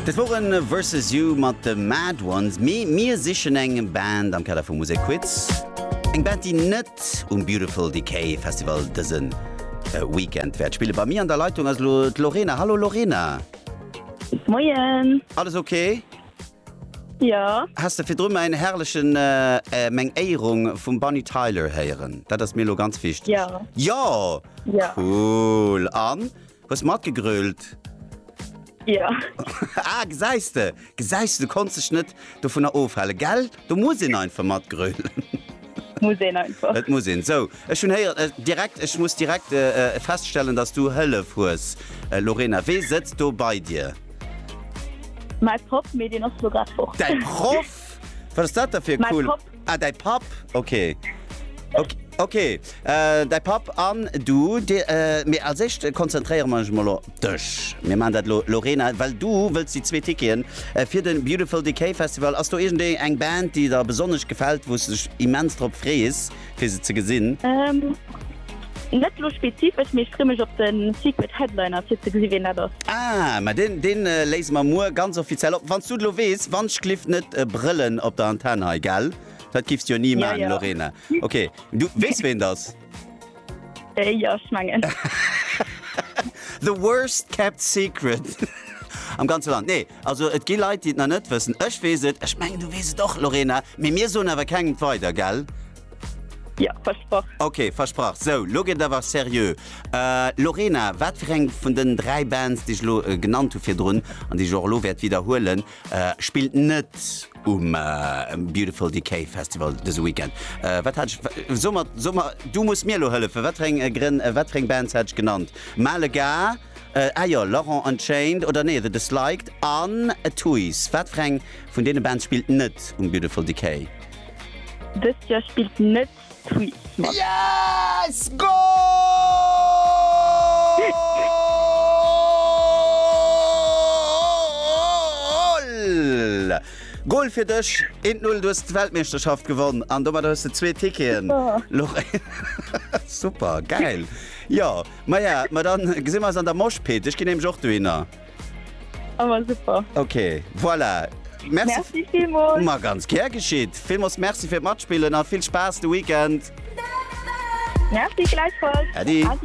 Dat woren Versus You mat de Mad Ones, mee mir sichen eng Band am Kader vum Musekquiz, eng Band déi net um Beautiful Decay Festival dëse Weekend wäert spillen. Bei mir an der Leitung ass elo d'Lorena. Hallo Lorena. Moien. Alles ok? Jo. Has de virdru mäin herrlechen meng Éierung vum Bonnie Tyler héieren? Dat ass mir elo ganz wichteg. Jo. Jo! Jo. Cool. An Hues mat gegrölt? Ja. Ah, gesäis de, gesäis de, du konns dech net dovunner ofhalen, gell? Do muss een einfach mat grölen. Muss een einfach. Et muss een. Sou, ech hunn héier, äh, direkt, ech muss direkt äh, äh feststellen, dass du Hëllef hues. Äh, Lorena, wee sëtzt do bei dir? Mäi Papp, mee deen ass lo grad fort. Däi Proff? Wat ass dat da fir e Mein cool? Papp. Ah, däi Papp, ok. Ok, ok. Däi Papp an du, dir, mee als éischt konzentréiere mer eis emol op dech. Mir maachen dat elo, Lorena, well du wëlls déi zwee Ticketen fir de Beautiful Decay Festival. Ass do iergendee eng Band, déi der besonnesch gefält, wou s de dech immens drop frees, fir se ze gesinn? Net lo spezifesch, mee ech free mech op den Secret Headliner fir ze gesi ween dat ass. Ah, ma deen deen léise mer muer ganz offiziell op, wanns du et lo weess. Wann's glyph net brëllen op der Antenne hei, gell? Dat glyphs jo ni maan, Lorena. Ok, du weess ween et ass? Jo, ech mengen. The worst kept secret am ganze Land. Nee, also et gi Leit déi et nach net wëssen. Ech weess et, ech mengen du weess et och, Lorena, mee mir soen awer kengem et weider, gell? Ja, versproch. Ok, versprach. Sou, lo gëtt et awer seriö. Äh, Lorena, wat fir eng vun den dräi Bands, déi ech elo äh, genannt hu virdrun an déi ech och elo wäert widderhuelen, äh, spillt net um äh, Beautiful Decay Festival dëse Weekend? Äh, wat hat ech, wa- so mat, so mat, du muss mir elo hëllefen. Wat fir eng äh, Grënn, äh, wat fir eng Bands hat ech genannt? Malega, äh, ah jo, Laurent Unchained, oder nee, The Disliked an Tuys. Wat fir eng vun deene Bands spillt net um Beautiful Decay? Dëst Joer spillt net d'Tweets mat. Yes! Goal! Goal fir dech! 1 0, du hues d'Weltmeeschterschaft gewonn an domadder hues de zwee Ticketen. Super, gäil! Jo, maja, ma dann gesi mer eis an der Moshpit. Ech ginn nämlech och dohinner. Awer super. Ok, voilà. Merci, merci villmools. Ma ganz ger geschitt. Villmools Merci fir d'Matspillen a vill Spaass de Weekend. Merci gläichfalls. Äddi.